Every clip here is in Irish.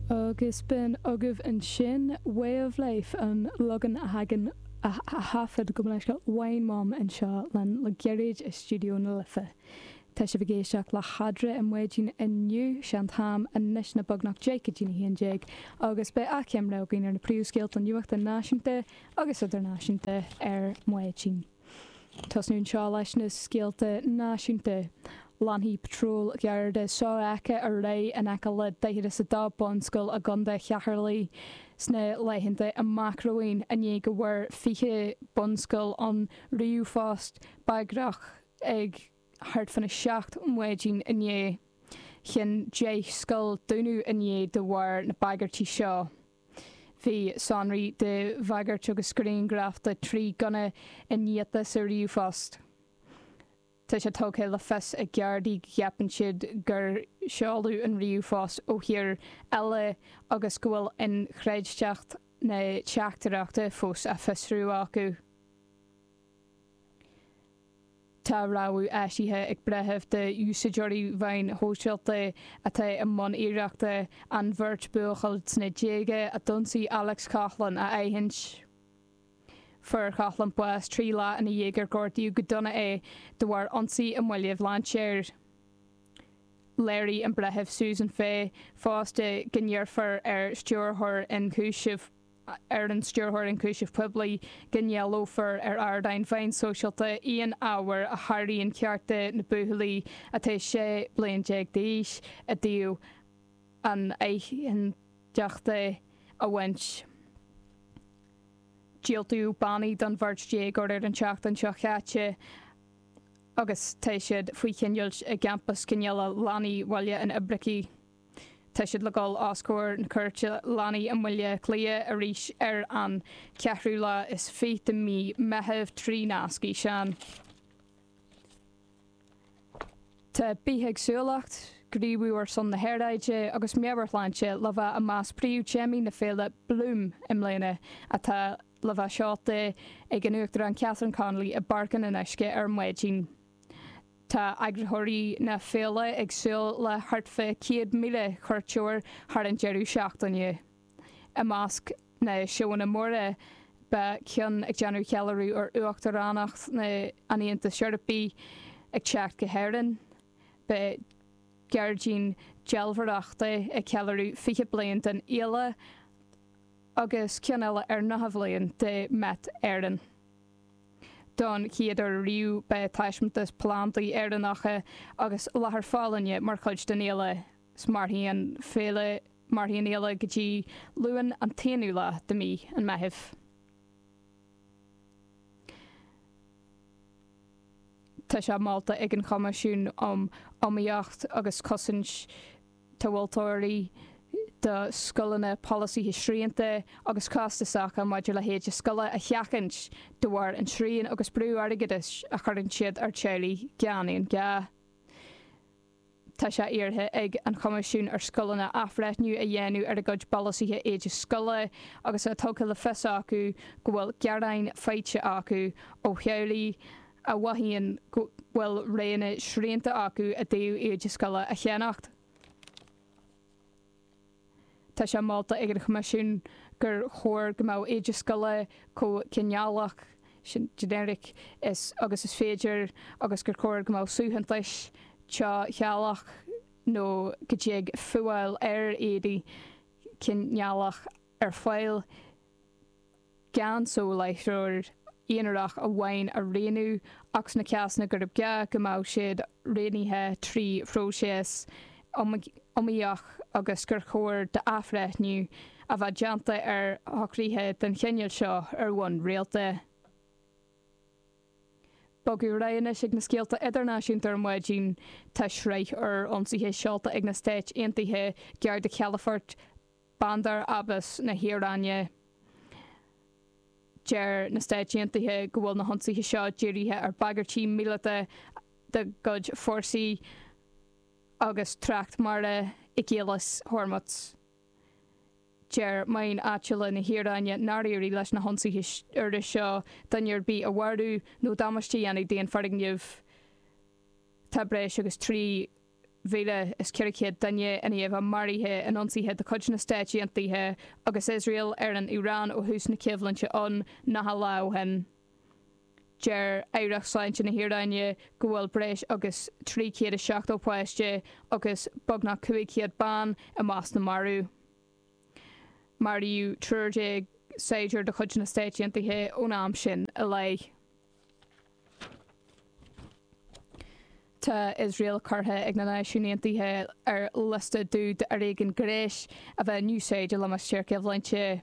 Agus b'in agaibh ansin Way of Life, an leagan a thagann a thaifead go minic Wine Mum anseo linn le gairid i Stiúideo na Life. Tá sibh ag éisteacht le hAndrea i Maidin inniu, sé an t-am anois ná beagnach deich go dtí'n a haon déag agus beidh achoimre againn ar na príomhscéalta nuachta náisiúnta agus idirnáisiúnta ar maidin. Tosnú anseo leis na scéalta náisiúnta. Leanfaidh patróil Gharda sofheicthe ar aghaidh in aice le 42 bunscoil i gContae Cheatharlaigh sna laethanta amach romhainn i ndiaidh go bhfuair 20 bunscoil an ríomhphost bagrach ag thart fán 7 maidin inné. Chinn 10 scoil dúnadh inné de bharr na bagairtí seo. Bhí sonraí de bhagairt agus grianghraif de thrí ghunna iniata sa ríomhphost. Tá sé tugtha le fios ag Gardaí go gceapann siad gur seoladh an ríomhphost ó thír eile agus go bhfuil inchreidteacht na teachtaireachta fós á fiosrú acu. Tá rabhadh eisithe ag breitheamh do úsáideoirí mheáin shóisialta atá i mbun iarrachta an bheirt bhuachaill sna déaga a d'ionsaigh Alex Coughlan a aithint. Fuair Coughlan bás trí lá ina dhiaidh gur gortaíodh go dona é de bharr ionsaí i mBaile Bhlainséir. Léirigh an Breitheamh Susan Fay fosta go n-iarrfar ar Stiúrthóir Ionchúiseamh na. ar an Stiúrthóir Ionchúiseamh Poiblí go n-éileofar ar ardáin mheáin sóisialta aon ábhar a sháraíonn cearta na buachaillí atá 16 bliain d'aois i dtaobh anaithnideachta a bhaint. Diúltaíodh bannaí don bheirt dhéagóir ar an tseachtain seo chaite agus tá siad faoi choinneáilt i gCampas Coinneála Leanaí Bhaile an Oibricigh. Tá siad le dul os comhair na cúirte leanaí i mBaile Átha Cliath arís ar an cheathrú lá is fiche de mhí Meitheamh trí nasc fhíseáin. Tá bithéagsúlacht, gníomhú ar son na haeráide agus meabhairshláinte le bheith i measc príomhthéamaí na féile Bloom i mbliana, atá le bheith seolta ag an Uachtarán Catherine Connolly i bPáirc an Fhionnuisce ar maidin. Tá eagraitheoirí na féile ag súil le thart fá 100,000 cuairteoir thar an deireadh seachtaine. I measc na seóanna móra beidh ceann ag déanamh ceiliúradh ar Uachtaránacht an Aontais Eorpaigh ag teacht go hÉirinn. Beidh gairdín dealbhóireachta ag ceiliúradh 20 bliain den fhéile agus ceann eile ar 90 bliain de Met Éireann. Don chéad uair riamh beidh taispeántas plandaí Éireannacha agus láthair folláine mar chuid den fhéile. Mairfidh an féile Mairfidh an fhéile go dtí Luan an t-aonú lá de mí an Mheithimh. Tá sé molta ag an Choimisiún um Iomaíocht agus Cosaint. tomhaltóirí, do scoileanna polasaithe srianta agus costasacha maidir le héide scoile a sheachaint de bharr an tsriain agus brú airgeadais a chuireann siad ar teaghlaigh gan aon gá. Tá sé iarrtha ag an Choimisiún ar scoileanna athbhreithniú a dhéanamh ar a gcuid bpolasaithe éide scoile agus tá tugtha le fios acu go bhfuil gearáin faighte acu ó theaghlaigh a mhothaíonn go bhfuil roghanna srianta acu i dtaobh éide scoile a cheannacht. Tá sé molta ag an Choimisiún gur chóir go mbeadh éide scoile chomh cineálach, generic, agus is féidir agus gur chóir go mbeadh suaitheantais teas-séalach nó go dtig fuáil ar éadaí cineálach ar fáil gan soláthróir aonarach amháin a roghnú, ach sna cásanna gurb gá, go mbeadh siad roghnaithe trí phróiseas iomaíoch agus gur chóir d'athbhreithniú a bheith déanta ar shocruithe den chineál seo ar bhonn rialta. Bogadh ar aghaidh anois ag na scéalta idirnáisiúnta ar maidin. Tá sraith úr ionsaithe seolta ag na Stáit Aontaithe gar do chalafoirt Bandar Abbas na hIaráine Deir na Stáit Aontaithe go bhfuil na hionsaithe seo dírithe ar bhagairtí míleata dá gcuid fórsaí agus trácht mara i gCaolas Hormuz Deir meáin áitiúla na hIaráine nár éirigh leis na hionsaithe úra seo duine ar bith a mharú nó damáiste a dhéanamh d'aon foirgneamh Tá breis agus 3 mhíle is 400 duine i ndiaidh a bheith maraithe in ionsaithe de chuid na Stáit Aontaithe agus Iosrael ar an Iaráin ó thús na coimhlinte ann 90 lá ó shin. Deir Aireacht Sláinte na hIaráine go bhfuil breis agus 370 páiste agus beagnach 500 bean i measc na marbh. Maraíodh triúr déag saighdiúir de chuid na Stáit Aontaithe ón am sin i leith. Tá Iosrael curtha ag na Náisiúin Aontaithe ar liosta dubh d'fhoréigean gnéis a bheith in úsáid i limistéar coimhlinte.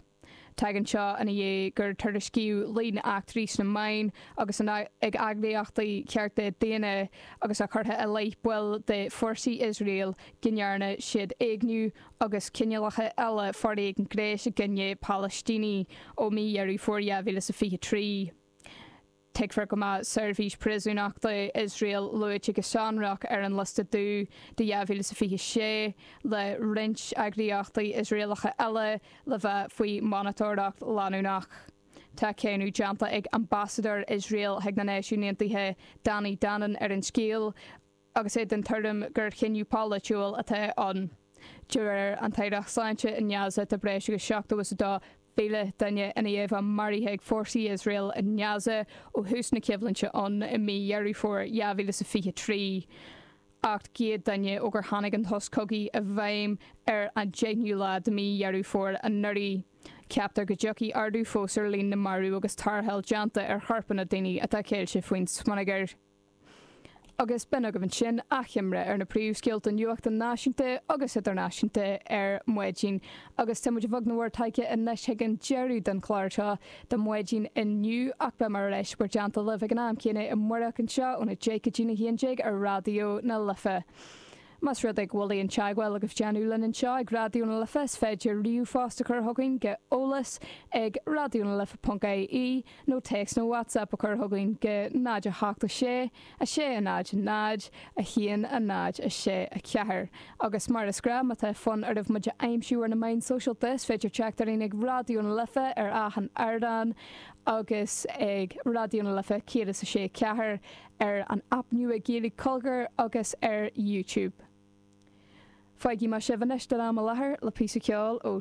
Tagann seo ina dhiaidh gur tuairiscíodh líon eachtraí sna meáin agus ag eagraíochtaí cearta daonna agus é curtha i leith baill de fórsaí Iosrael go ndearna siad éigniú agus cineálacha eile foréigin gnéis i gcoinne Palaistínigh ó mí Dheireadh Fómhair 2023. Tuigfear go mbeidh Seirbhís Príosúnachta Iosrael luaite go sonrach ar an liosta dubh do 2026, le roinnt eagraíochtaí Iosraelacha eile le bheith faoi mhonatóireacht leanúnach. Tá cáineadh déanta ag Ambasadóir Iosrael chuig na Náisiúin Aontaithe, Danny Danon, ar an scéal, agus é den tuairim gur chinneadh polaitiúil atá ann. De réir an tAire Sláinte i nGaza tá breis agus 72,000 duine i nGaza maraithe ag fórsaí Iosrael i nGaza ó thús na coimhlinte ann i mí Dheireadh Fómhair 2023, 800 duine ó gur tháinig an sos cogaidh i bhfeidhm ar an 10ú lá de mí Dheireadh Fómhair anuraidh. Ceaptar go dtiocfaidh ardú fós ar líon na marú agus tarrtháil déanta ar chorpanna daoine atá ceilte faoin smionagar. Agus b'in agaibh ansin achoimre ar na príomhscéalta nuachta náisiúnta agus idirnáisiúnta ar maidin agus tá muid beag nach mór tagtha anois chuig an deireadh den chlár seo do mhaidin inniu ach beimid ar ais bhur dteannta libh ag an am céanna amáireach anseo óna deich go dtí'n a haon déag ar Raidió na Life. Más rud é go bhfuil aon teagmháil agaibh le déanamh linn anseo ag Raidió na Life is féidir ríomhphost a chur chugainn go eolas ag raidionalife.ie nó téacs nó WhatsApp a chur chugainn go 0 8 6 0 0 1 0 6 4 Agus mar is gnáth má tá fonn oraibh muid a aimsiú ar na meáin sóisialta is féidir teacht orainn ag Raidió na Life ar achan ardán agus ag Raidió na Life 106.4 ar an aip nua Gaeilge Cogar agus ar YouTube. Fágfaidh mé sibh anois don am i láthair le píosa ceoil ó.